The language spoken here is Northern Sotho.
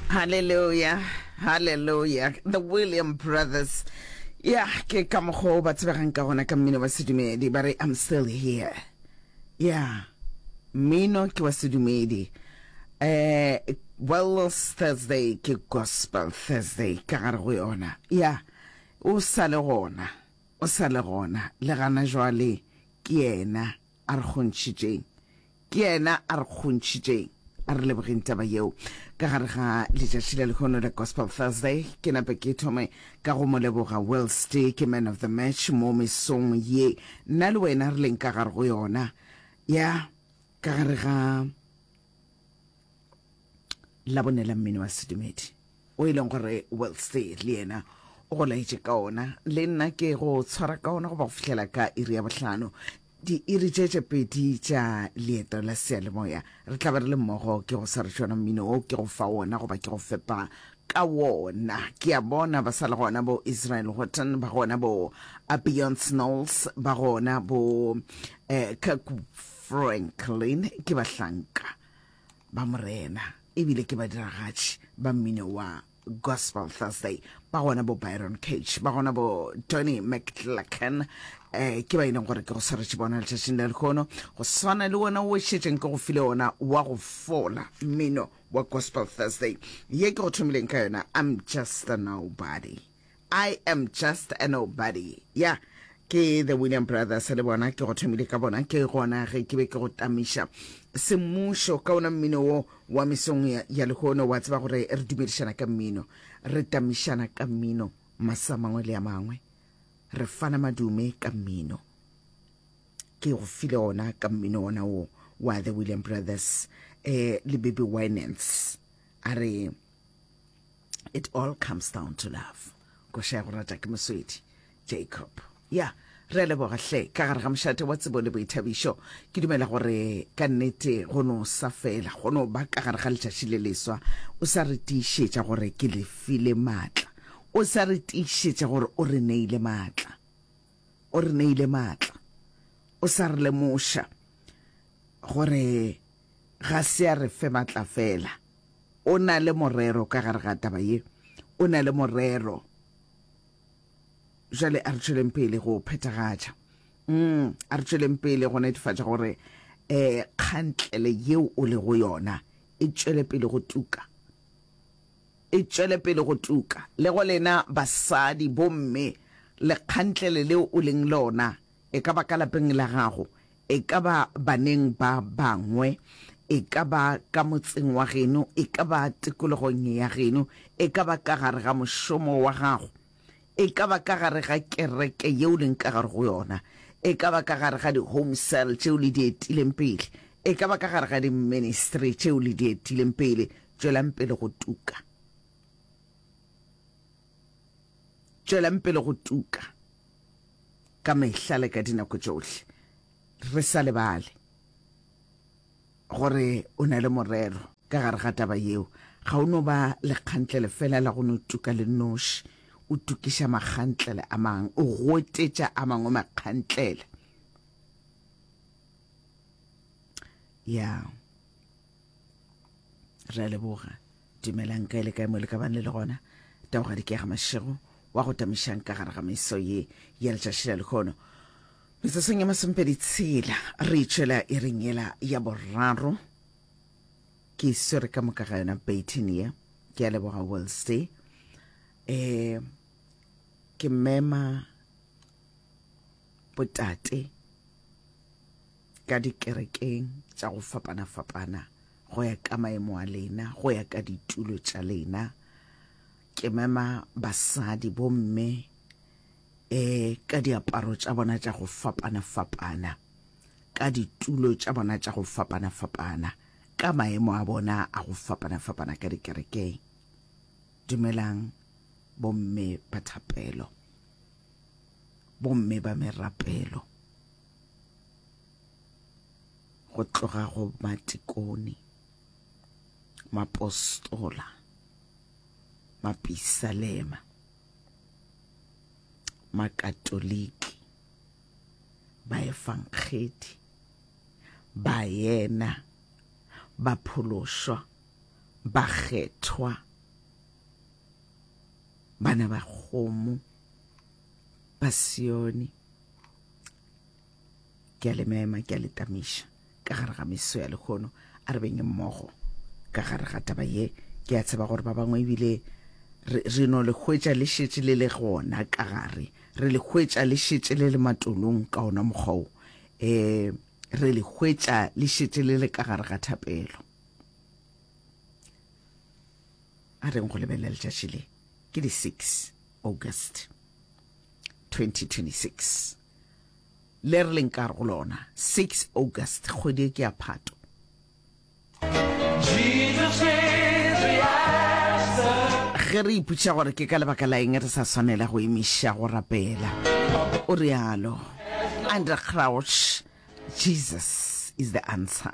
Hallelujah, hallelujah. The William Brothers. Ya, ke ka mokgwa o ba tsebegang ka gona ka mmino wa sedumedi. Ba re, I'm still here. Ya, mmino ke wa sedumedi. Eh, Wellness Thursday ke Gospel Thursday ka gare go yona. Ya, o sa le gona. O sa le gona. Le gana jwale ke yena. A re kgontšhitšeng. Ke Yena a re kgontšhitšeng. A re lebogeng taba yeo. Ka gare ga letšatši la lehono la Gospel Thursday, ke nape ke thome ka go Mo leboga whilst ke Man of the Match mo mesong ye nna le wena re leng ka gare go yona. Ya, ka gare ga. la bone la mmino wa sedumedi o e leng gore wellstay le yena o go laetše ka ona le nna ke go tshwara ka ona go ba go fihlela ka iri ya bohlano diiri tše tše pedi tša leeto la sealemoya re tla ba re le mmogo ke go sa re tšona mmino o ke go fa wona goba ke go fepa ka wona ke a bona ba sa le gona bo israel horton ba gona bo abion snols ba gona bo um Franklin ke bahlanka ba Morena ebile ke badiragatši ba mmino wa Gospel Thursday ba gona bo Byron Cage ba gona bo Tony McClacken eh ke ba e leng gore ke go swaretše bona letšatšing la lekgono go swana le wona o šetšeng ke go file ona wa go fola mmino wa Gospel Thursday ye ke go thomileng ka yona I'm just a nobody I am just a nobody. Yeah. Ke the William Brothers le bona ke go thomile ka bona ke gona ge ke be ke go tamiša semmušo ka ona mmino wo wa mesong ya, ya lehono wa tseba gore re dumedišana ka mmino re tamišana ka mmino masa mangwe le a mangwe re fana madume ka mmino ke go file ona ka mmino ona wo wa the William Brothers eh le Baby Winans a re it all comes down to love koša ya go rata ke moswedi jacob ya yeah. re a leboga hle ka gare ga mošate wa tsebo le boithabišo ke dumela gore ka nnete go no sa fela go no ba ka gare ga letšatši le leswa o sa re tiišetša gore ke le file maatla o sa re tiišetša gore o re neile maatla o re neile maatla o sa re lemoša gore ga se a re fe matla fela. O na le morero ka gare ga taba ye. O na le morero. Jale a re tšweleng pele go phethagatša. Mm, a re tšweleng pele go netefatša gore eh, kgantlele yeo o le go yona e tšwele pele go tuka e tšwele pele go tuka le go lena basadi bomme lekgantlele leo o leng lona E ka ba ka lapeng la gago, e ka ba baneng ba bangwe, e ka ba ka motseng wa geno, e ka ba tikologong ya geno, e ka ba ka gare ga mošomo wa gago, e ka ba ka gare ga kereke yeo leng ka gare go yona, e ka ba ka gare ga di-home cell tšeo le di etileng pele, e ka ba ka gare ga di-ministry tšeo le di etileng pele. Tšwelang pele go tuka. Tšwelang pele go tuka ka mehla le ka dinako tšohle, re sa lebale gore o na le morero ka gare ga taba yeo. Ga o no ba lekgantlele fela la go no tuka le noši, o tukiša makgantlele a mang, o gotetša a mangwe makgantlele. Ya. re a leboga dumelang kae le kae mo le ka bang le le gona taoga dikega mašego wa go tamišang ka gare ga meso ye ya letšatši la lekgono mesesong ya masompedi tshela re itšwela e rengela ya boraro ke swere ka moka ga yona baitin ye ke a leboga wellsty um eh, ke mema botate ka dikerekeng tša go fapana-fapana go ya ka maemo a lena, go ya ka ditulo tša lena. Ke mema basadi bomme eh ka diaparo tša bona tša go fapana-fapana, ka ditulo tša bona tša go fapana-fapana, ka maemo a bona a go fapana-fapana ka dikerekeng. Dumelang bomme ba thapelo, bomme ba merapelo. go tloga go matikone mapostola mapisalema makatoliki baefangedi bayena baphološwa bakgethwa bana ba kgomo ba sione ke a le mema ke a le tamiša ka gare ga meso ya lekgono a re beng mmogo ka gare ga taba ye ke a tseba gore ba bangwe ebile re no le hwetša le šetše le le gona ka gare re le hwetša le šetše le le matolong ka ona mokgwa o um re le hwetša le šetše le le ka gare ga thapelo a reng go lebelela letšatši le ke di-six August 2026, le re leng kar go lona 6 August, kgwedi e ke ya Phato. Ge re iputša gore ke ka lebaka la eng re sa swanela go emiša go rapela, o realo André Crouch, Jesus is the answer.